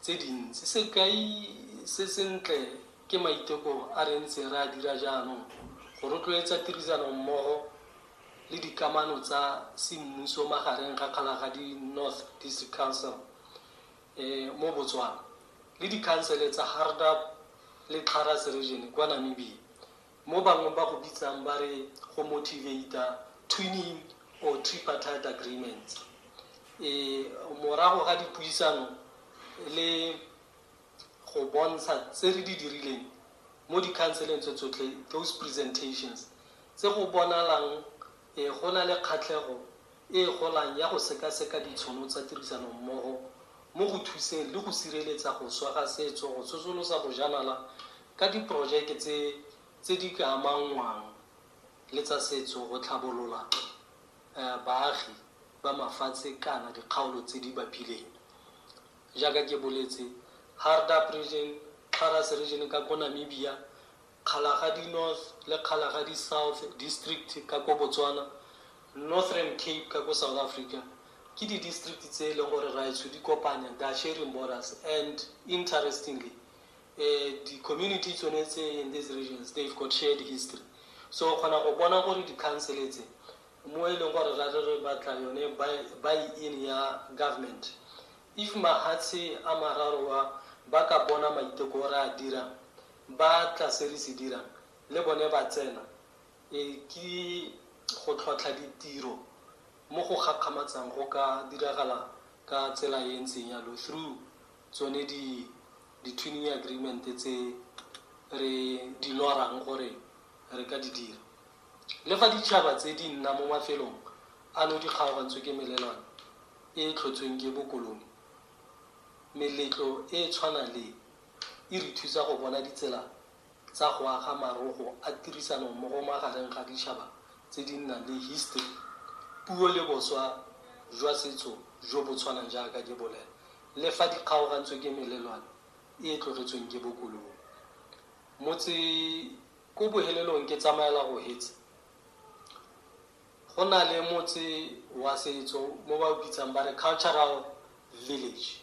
tse dintsi. Sekai se sentle ke maiteko a re ntseng re a dira jaanong go rotloetsa tirisanommogo le dikamano tsa semmuso magareng ga Kgalagadi North District Council e mo Botswana le dikhansele tsa Hardap le Xarras Region kwa Namibia. Mo bangwe ba go bitsang ba re go motivate-a twinning or tripartite agreements. E, morago ga dipuisano le go bontsha tse re di dirileng mo dikhanseleng tse tsotlhe, those presentations, tse go bonalang e, go na le kgatlhego e e golang ya go sekaseka ditshono tsa tirisanommogo mo go thuseng le go sireletsa go swa ga setso, go tsosolosa bojanala ka diporojeke tse tse di ka amanngwang le tsa setso go tlhabolola baagi ba mafatshe kana dikgaolo tse di bapileng. Jaaka ke boletse, Hardap Region, Xaras Region ka ko Namibia, Kgalagadi North le Kgalagadi South District ka ko Botswana, Northern Cape ka ko South Africa ke di-district tse e leng gore raetsho di kopanya Dutch-Aryan Borders and interestingly Di community tsone tse in these regions they've got shared history so o kgona go bona gore di council tse mo e leng gore ra re re batla yone buy in ya government if mahatshe a mararo wa ba ka bona maiteko o re a dirang ba tla se re se dirang le bone ba tsena e ke go tlhotlha ditiro mo go gakgamatsang go ka diragala ka tsela e ntseng yalo through tsone di-twinning agreement-e tse re di lorang gore re ka di dira. Le fa ditšhaba tse di nna mo mafelong ano di kgaogantswe ke melelwane e e tlhotsweng ke bokoloni, meletlo e e tshwanang le e re thusa go bona ditsela tsa go aga marogo a tirisanommogo magareng ga ditšhaba tse di nnang le histeri, puo le boswa jwa setso jo bo tshwanang jaaka ke bolela, le fa di kgaogantswe ke melelwane e e tlogetsweng ke bokoloni. Motse ko bohelelong ke tsamaela go hetse, go na le motse wa setso mo ba o bitsang ba re cultural village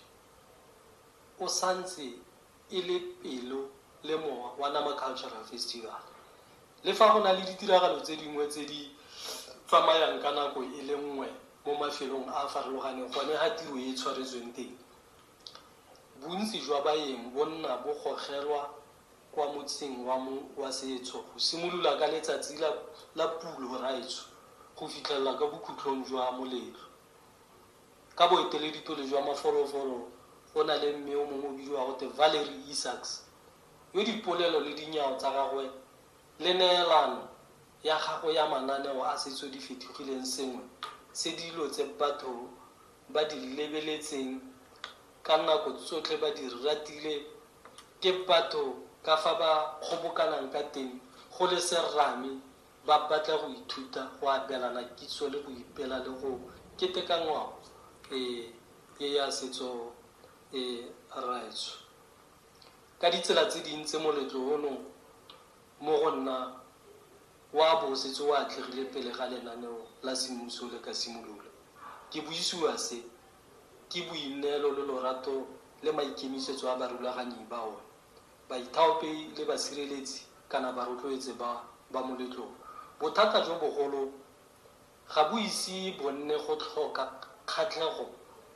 o santse e le pelo le mowa wa Nama Cultural Festival. Le fa go na le ditiragalo tse dingwe tse di tsamayang ka nako e le nngwe mo mafelong a a farologaneng gone ga tiro e tshwaretsweng teng, bontsi jwa baeng bo nna bo gogelwa kwa motsing wa mo wa setso go simolola ka letsatsi la Pulo Raetsho go fitlhelela ka bokhutlong jwa moletlo. Ka boeteledipele jwa mafolofolo go na le mme yo mongwe o bidiwa gote Valerie Isaacs, yo dipolelo le dinyao tsa gagwe le neelano ya gagwe ya mananeo a setso di fetogileng sengwe se dilo tse batho ba di lebeletseng ka nako tsotlhe ba di ratile ke batho ka fa ba kgobokanang ka teng go le serame Ba batla go ithuta go abelana kitso le go ipela le go keteka ngwao e e ya setso e raetsho ka ditsela tse dintsi. Moletlo ono mo go nna wa bo o setse o atlegile pele ga lenaneo la semmuso le ka simolola. Ke buisiwa se ke boineelo le lorato le maikemisetso a barulaganyi ba one baithaopi le basireletsi kana barotloetse ba ba moletlong. Bothata jo bogolo ga bo ise bo nne go tlhoka kgatlhego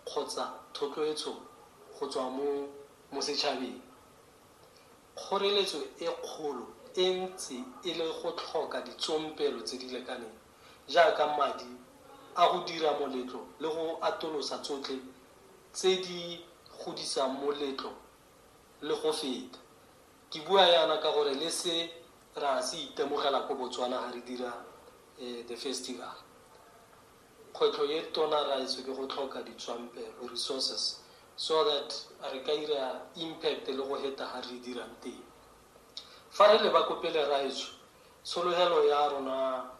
kgotsa thotloetso go tswa mo mo setšhabeng. Kgoreletso e kgolo e ntse e le go tlhoka ditsompelo tse di lekaneng jaaka madi a go dira moletlo le go atolosa tsotlhe tse di godisang moletlo Le go feta. Ke bua yana ka gore le se ra se itemogela ko Botswana ga re dira the festival. Kgwetlho e tona raetsho ke go tlhoka ditswampelo, resources, so that re ka ira impact le go heta ga re dirang teng. Fa re leba ko pele raetsho, tshologelo ya rona ke.